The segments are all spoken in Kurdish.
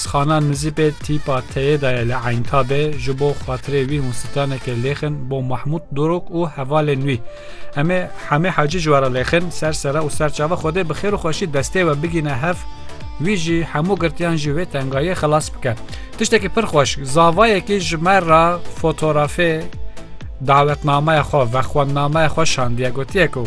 Sixana Nizîpê tîpa teyê de ye li Eyntabê, ji bo xatirê wî hûn stranekê lêxin bo Mahmût Dorok û hevalên wî. Em ê Hemî Hacî ji we re lêxin, ser sere û ser çava Xwedê bi xêr û xweşî destê we bigîne hev, wî jî hemû girtiyan ji wê tengayiyê xilas bike. Tiştekî pir xweş, zavayekî ji me re fotorafê dawetnameya xwe ve xwendnameya xwe şandiye, gotiye ku,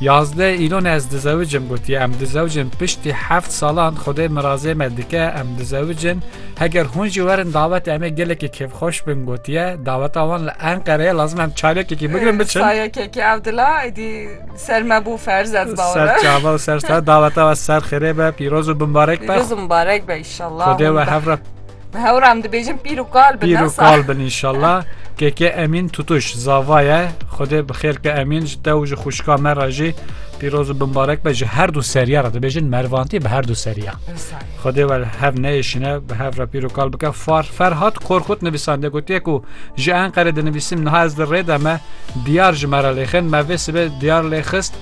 Yazdeh îlon ez dizewicim gotiye em dizewicin piştî heft salan xwedê mirazê me dike em dizewicin heger hûn jî werin dawetê em ê gelekî kêfxweş bin gotiye daweta wan li Enqereyê lazim em çayekekî bigirin biçin Sayekekî ev dila êdî ser me bû ferz ez bawre. ser çava û ser star daweta we ser xêrê be pîroz û bimbarek be Pîroz û mibarek be inşallah. xwedê we hevre Bi hewra em dibêjin pîr û kal bin. Pîr û kal bin inşallah. KK Emîn Tutuş zava ye. Xwedê bi xêr ke Emîn ji te û ji xwişka me re jî pîroz û binbarek be ji her du seriya re dibêjin mervantî bi her du seriya. Xwedê we hev neyêşine bi hev re pîr û kal bike far Ferhat Korkut nivîsandê gotiye ku ji Enqerê dinivîsim niha ez li rê de me diyar ji me re lêxin me vê sibê diyar lê xist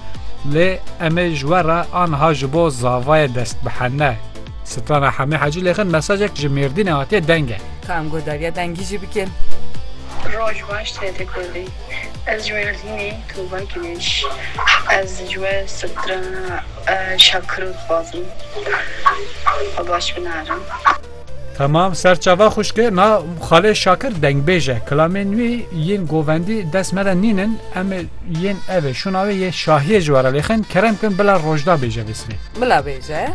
lê em ê ji we re anha ji bo zavayê dest bihene. Strana Hemê Hacî lêxin mesajek ji Mêrdînê hatiye deng e. Ka em got dagiya dengî jî bikin. Roj baş TT Kurdî. Ez ji Mêrdînê Tuba Gilêş. Ez ji we strana Şakiro dixwazim. Xwe baş binare. Temam serçava xwişke na xalê Şakir dengbêj e. Kilamên wî yên govendî dest me de nînin em ê yên ev ê şûna wê yê şahiyê ji we re lêxin kerem kin bila rojda bêje vê sibê. Bila bêje.